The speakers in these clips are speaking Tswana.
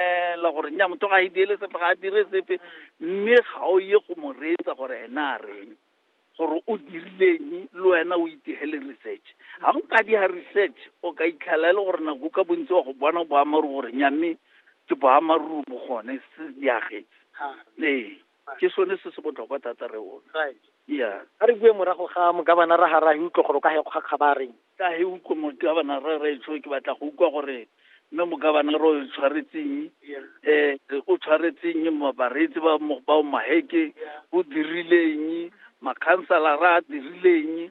ela gore nya motho ga a ideele sepe ga a dire sepe mme ga o ye go mo reetsa gore ene a reng gore o dirileng le wena o itegele research ga o ka diga research o ka itlhela e le gore nako ka bontsi wa go bona boamaruri gore nyamme ke boamaruri bo gone se diagetse ee ke sone se se botlhokwa thata re o right yeah a re bue morago ga mogabana ra ga ra e utlwa gore o ka he kgwa kgabareng ka he utlwa mogabana ra ra itsho ke batla go utlwa gore mme mogabana ro o tshwaretseng eh o tshwaretseng mabareetsi ba mo ba maheke o dirileng makhansala ra dirileng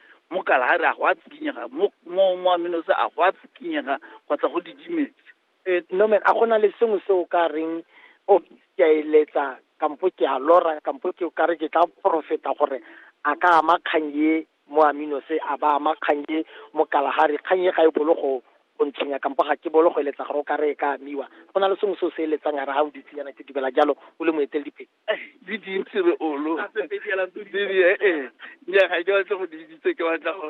mo kalahari a go a tsikinyega mo mo mo aminose a go a tsikinyega kgotsa go didimetse Eh, nomen a gona le sengwe se o ka reng o ke a eletsa kampo ke a lora kampo ke o ka re ke tla profeta gore a ka ama kgang ye mo aminose a ba ama kgang ye mo kalahari kgang ye ga e bolo go go ntshwenya kampo ga ke bolo go eletsa gore o ka re e ka amiwa go na le sengwe se o se eletsang a re ga o ditseyana ke dumela jalo o le moeteledipele di dintsi re olo ee ee nya ga ke batle go di bitse ke batla go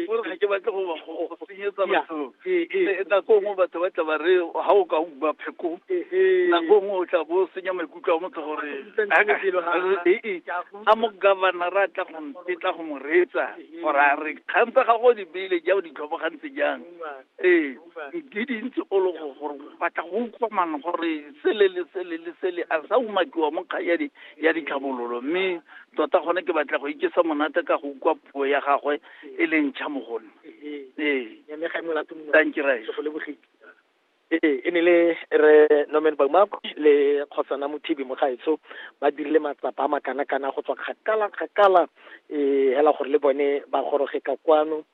gore ga ke batle go ba go senyetsa batho ee nako nngwe batho ba tla ba re ga o ka uma pheko nako nngwe o tla bo o senya maikutlo a motho gore ee a mo governor a tla go ntetla go mo reetsa gore a re kgang tsa gago di beile ja o di tlhobogantse jang ee di dintsi o le gore batla go utlwa mang gore sele le sele le sele a sa umakiwa mo kgang ya di ya ditlhabololo mme tota gone ke batla go ikesa monate ka go utlwa puo ya gagwe e leng ntšha mo gone ee thank you right ee e ne le re norman baumakwe le kgotsana mothibi mogaetsho ba dirile matsapa a makana-kana go tswa kgakala-kgakala um hela gore le bone ba goroge ka kwano